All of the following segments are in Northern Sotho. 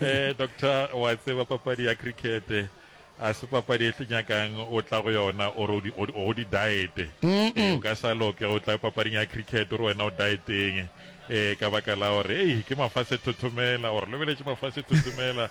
eh doctor wa tseba papadi ya cricket a se papadi e tlenyakang o tla go yona ore o di diet eh, o ka sa loke o tla papading ya cricket ore wena o dieteng eh ka baka la gore ei ke mafase thothomela ore lebeletše mafase thothomela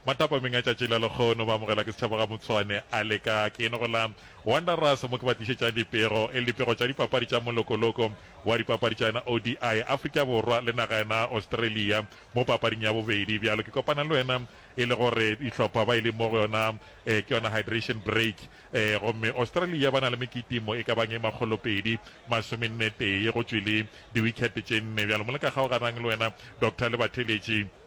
Matapameng a tšatši la lekgono ba amogelwa ke setšhaba ga Motshwane a le ka ke eno go la Wanderers mo ke ba tlišetšang dipego e le dipego tša dipapadi tša molokoloko wa dipapadi tša yena ODI Afrika Borwa le naga yena Australia mo papading ya bobedi bjalo ke kopana le wena e le gore dihlopha ba e le mo go yona ke yona hydration break gomme Australia ba na le mekitimo e ka bang e makgolopedi masomenne tee go tšwele di wicket tše nne bjalo mo le ka kgaoganang le wena Doctor le batheletši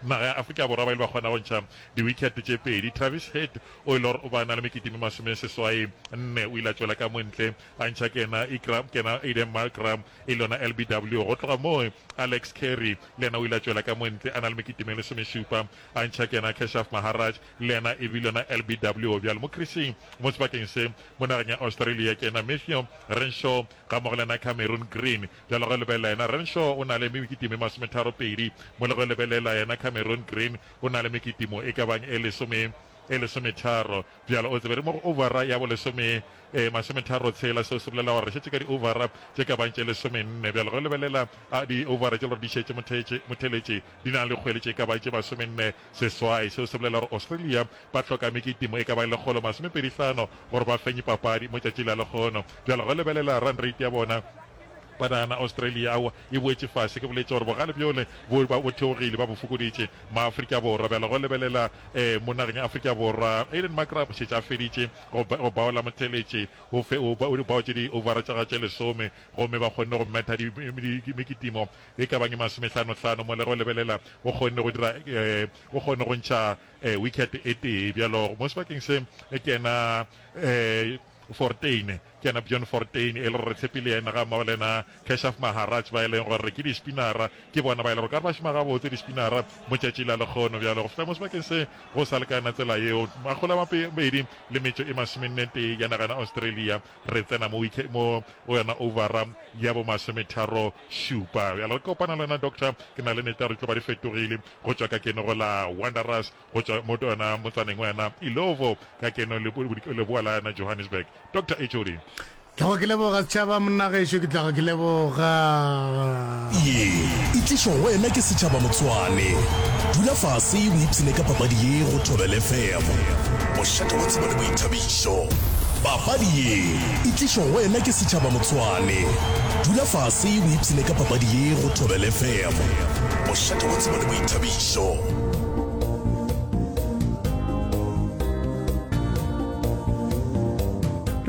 Naga ya Afrika Borwa ba ile ba kgona go ntšha diwikheto tše pedi. Travis Head o ile go ba na le mekete me masomeseswai nne o ile a tšwela ka montle a ntšha Kena Iqra, Kena Aiden Markra e le yona LBW. Go tloga moo Alex Carey le yena o ile a tšwela ka montle a na le mekete me lesomešupa a ntšha Kena Keshav Maharaj le yena e bile yona LBW. Bjalo mo krising mo sebakeng se mo nageng ya Australia Kena Matthew Renshaw gammogo le yena Cameron Green Bjalo ge lebelela yena Renshaw o na le mekitimo e masometharo pedi, mo le ge lebelela yena Cameron Green o na le mekitimo e ka bang e lesome e lesometharo. Bjalo o tsebe re mo go ovara ya bolesome e masometharo tshela, seo se bolela gore re šetše ka di ovara tše ka bang tše lesome nne. Bjalo ge lebelela a di ovara tše le gore di šetše mothetše motheletše di na le dikgwele tše ka bang tše masome nne Seswai seo se bolela gore Australia ba hloka mekitimo e ka bago lekgolo masomepedi hlano gore ba fenye papadi mo tšatši la lekgono. Bjalo ge lebelela run rate ya bona, ba nagana Australia aowa e boetše fase, ke boletše gore bogale bjole bo ba bo theogile ba bo fokoditše ma Afrika Borwa. Bjalo ge lebelela eh mo nageng ya Afrika Borwa, Aiden Markram o šetše a feditše go go baola motheletše o fe o baotše di ovara tša gagwe tše lesome gomme ba kgonne go metha di mekitimo e ka bang masomehlanohlano mo le go lebelela o kgonne go dira o kgonne go ntšha wicket e tee bjalo mo sebakeng se ke yena Fortuin ke yena Bjorn Fortuin e le gore re tshepile yena ga mmogo le yena Keshav Maharaj ba e leng gore ke di-spinnera ke bona ba e le gore ka re ba šoma gabotse di-spinnera mo tšatši la lekgono bjalo go fihla mo sebakeng se go sa lekana tsela yeo makgolo a mabedi le metšo e masomenne tee ya nagana Australia re tsena mo mo go yona overa ya bomasometharo Šupa. Bjale re kopana le wena doctor, ke na le neta re tlo ba di fetogile go tšwa ka keno go la Wanderers go tšwa mo ona motsaneng wa yona Illovo ka keno le leboa la yona Johannesburg. Doctor HOD. Tlago ke leboga setšhaba monna gešo ke tlago ke leboga. Ye e tlišwa go wena ke Setšhaba Motswane. Dula fase o ipshine ka papadi ye go Thobela FM. Mošate wa tsebo le boithabišo. Papadi ye. E tlišwa go wena ke Setšhaba Motsoane. Dula fase o ipshine ka papadi ye go Thobela FM. Bošate bo tseba le boithabišo.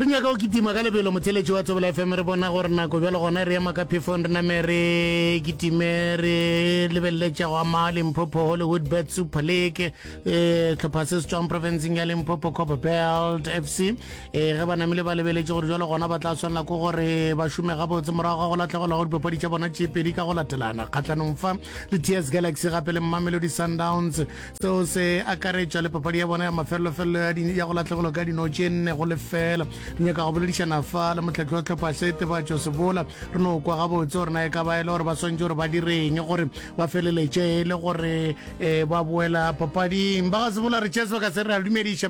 re nyaka go kitima ka lebelo motheletši wa thobela fm re bona gore nako bjalo gona re ema ka phefong re name re kitime re lebeleletša go ama limpopo hollywood bet super league um tlhopha se se tswang provinceng ya limpopo coba belt f c ee ge ba namile ba lebeletše gore jalo gona ba tla tshwanela ko gore ba šome gabotse morago ga go latlhegelwa go dipapadi tša bona tše pedi ka go latelana kgatlhanong fa le ts galaxy gape le mmamelodi sundowns seo se akaretša le papadi ya bona ya mafelelofelelo ya go latlhegelwa ka dino tše nne go lefela re nyaka go boledišana fa le motlhatlo wa tlhopha se tebatšo sebola re no kwa gabotse gore na e ka ba e le gore ba swantse gore ba direng gore ba feleletše e le gore um ba boela papading ba ga sebola re chesebaka se re a dumediša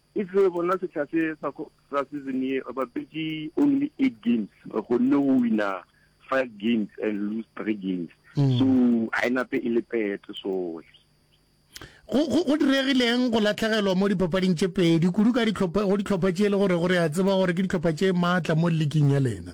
E tloge bona sehla se sa ko sa season ye ba bapetše only eight games, re kgonne go wina five games and lose three games. Mm. So a e nape e le pete soe. Go go go diregileng go latlhegelwa mo dipapading tše pedi kudu ka ditlhopha go ditlhopha tše e le gore gore a tseba gore ke ditlhopha tše maatla mo ligeng ya lena?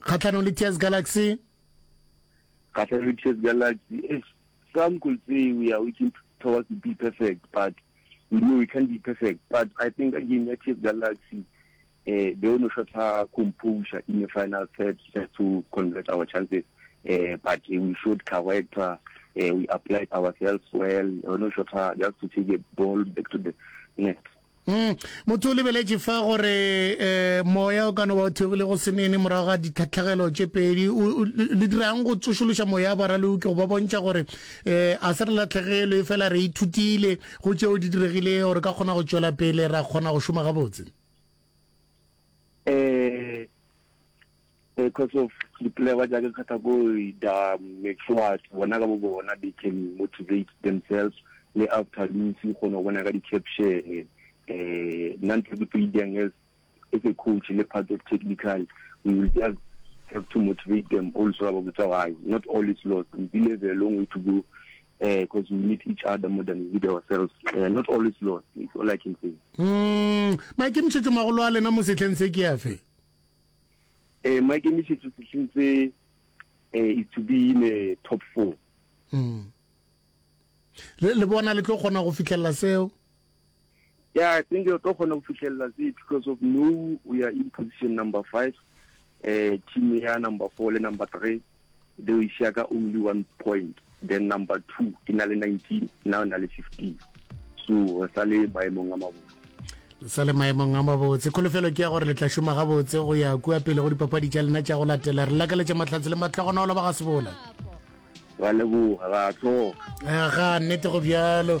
kgatlhanong le ts galaxy kgatlhanong le ts galaxy eh, some could say we are working towards to be perfect but we know we can't be perfect but i think ka game ya ts galaxy eh, they ono shot her composure in the final third just to convert our chances eh, but eh, we showed character eh, we applied ourselves well ono shot her just to take a ball back to the net Mm. Motho o lebeletše fa gore um moya o ka no ba o theogile go senene morago ga ditlhatlhagelo tše pedi. Le dirang go tsošološa moya wa baraleuki go ba bontšha gore um a se re latlhegelwe fela re ithutile go tšeo di diregile gore ka kgona go tšwela pele ra kgona go šoma gabotse? um Because of dipolelwa tša ke kgetha ko da make sure bona ka bo bona they can motivate themselves le after loose go no bona ka di caption eh nna ntho ke payang as as a coach le part of technical we will just have to motivate them also about the time. Not all is lost. We still have a long way to go because uh, we need each other more than we need ourselves. Uh, not all is lost. It's all I can say. Mm, maikemišetšo magolo a lena mo setlheng se ke afe Eh, maikemišetšo sehleng se eh, is to be in a top four mm. le, le bona le tlo kgona go fitlhelela seo yeah i think o tlo kgona go fitlhelela se because of no we are in position number five eh team ya number four le number three They will share ka only one point, then number two e na le 19 now e na le 15 so re sa le maemong a mabotse sa le maemong a mabotse kholofelo ke ya gore le tla šoma gabotse go ya kua pele go dipapadi tša lena tša go latela re lakaletša mahlatse le mahlogonolo ba ga sebola ra leboga ra tloga ga nnete go bjalo